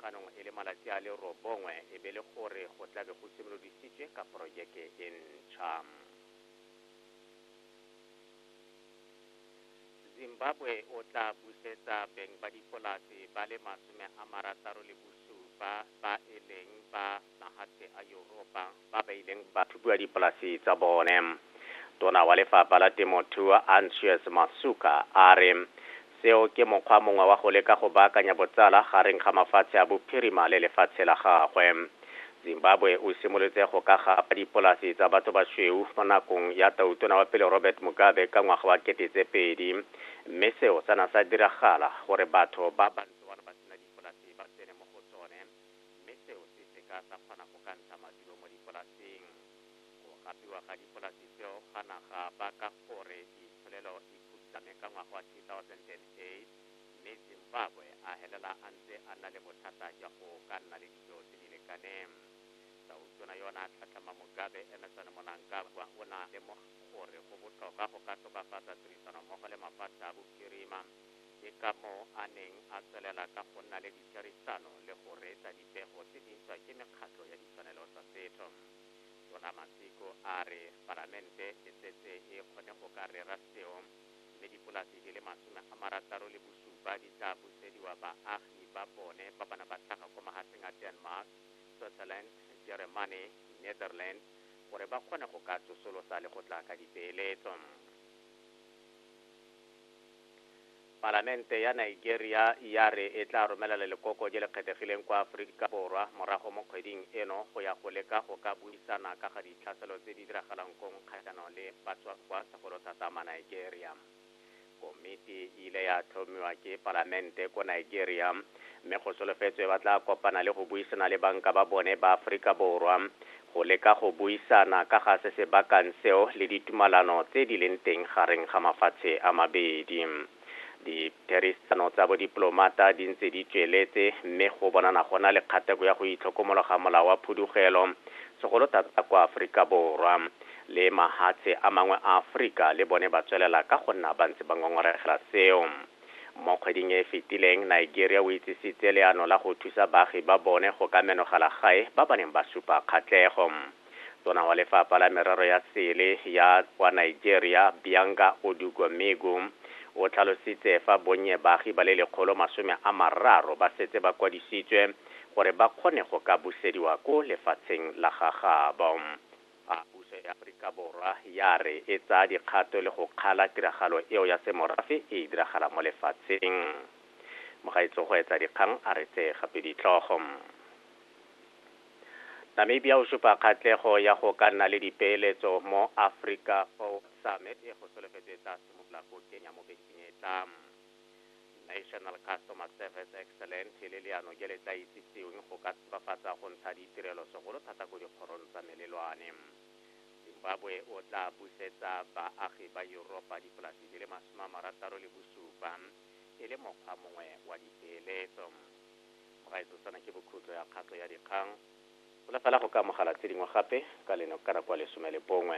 Jaanong e le malatsi a le robongwe e be e le gore go tla be go simolodisitswe ka porojeke e ntšha. Zimbabwe o tla busetsa beng ba dipolase ba le masome a marataro le bosupa ba e leng ba magatse a Yuropa ba ba ileng ba thubiwa dipolase tsa bone. Tona wa lefapha la temothuo Anxious Masuka a re seo ke mokgwa mongwe wa go leka go baakanya botsala gareng ga mafatshe a bophirima le lefatshe la gagwe. Zimbabwe o simolotse go ka gapa dipolase tsa batho basweu mo nakong ya tautona wa pele Robert Mugabe ka ngwaga wa kete tse pedi mme seo sa na sa diragala gore batho ba bantsi mme seo se seka sa kgona go ka ntsha maduo mo dipolaseng. Go gapiwa ga dipolasi tseo ga na ga baka gore itsholelo e phutlhame ka ngwaga wa 2008, mme Zimbabwe a helela a ntse a nna le bothata jwa go ka nna le dijo tse di lekaneng. Tautona yo o ne a tlhatlhama Mugabe, Emmerson Mnangagwa, o ne a lemoga gore go botlhokwa go ka tokafatsa tirisanommogo le mafatshe a bophirima Ke ka moo a neng a tswelela ka go nna le ditherisano le go reetsa dipego tse di ntšhwa ke mekgatlho ya ditshwanelo tsa setho. Tona Masiko a re Palamente e setse e kgone go ka rera seo mme dipolasi di le masome a marataro le bosupa di tla busediwa baagi ba bone ba bana ba tlhaga kwa mahatsheng a Denmark, Switzerland, Jeremane, Netherlands gore ba kgone go ka tsosolosa le go tla ka dipeeletso. Palamente ya Nigeria ya re e tla romela lelekoko je le kgethegileng kwa Aforika Borwa morago mo kgweding eno go ya go leka go ka buisana ka ga ditlhaselo tse di diragalang kong kgatlhanong le batswakwa segolo thata Manigeria. Komiti e ile ya tlhomiwa ke palamente ko Nigeria, mme go solofetswe ba tla kopana le go buisana le banka ba bone ba Aforika Borwa go leka go buisana ka ga se se bakang seo le ditumalano tse di leng teng gareng ga mafatshe a mabedi. Ditherisano tsa bodipolomata di ntse di tsweletse mme go bonana go na le kgateko ya go itlhokomologa molao wa phudugelo, segolo thata kwa Aforika Borwa, le mahatshe a mangwe a Aforika le bone ba tswelela ka go nna ba ntse ba ngongoregela seo. Mo kgweding e e fetileng, Nigeria o itsisitse leano la go thusa baagi ba bone go ka menogela gae ba ba neng ba supa kgatlego. Tona wa Lefapha la Merero ya Sele ya kwa Nigeria, Bianga Odugomegu, o tlhalositse fa bonnye baagi ba le lekgolo masome a mararo ba setse ba kwadisitswe gore ba kgone go ka busediwa ko lefatsheng la ga gabo. A puso ya Aforika Borwa ya re e tsaya dikgato le go kgala tiragalo eo ya semorafe e e diragalang mo lefatsheng. Mogaetsogoetsadikgang a re tse gape ditlhogo. Namibia o supa kgatlego ya go ka nna le dipeeletso mo Africa Forward Summit e go solofetswe e tla simolola ko Kenya mo bekeng e e tlang. National Customer Service Excellent e le leano je le tla itsiseweng go ka tsbafatsa go ntsha ditirelo segolo thata ko dikgorong tsa melelwane. Zimbabwe o tla busetsa baagi ba Yuropa dipolasi di le masome a marataro le bosupa e le mokgwa mongwe wa dipeeletso. Mogaetsetsana ke bokhutlo ya kgato ya dikgang. Bola fela go ka amogela tse dingwe gape ka leno ka nako ya lesome le bongwe.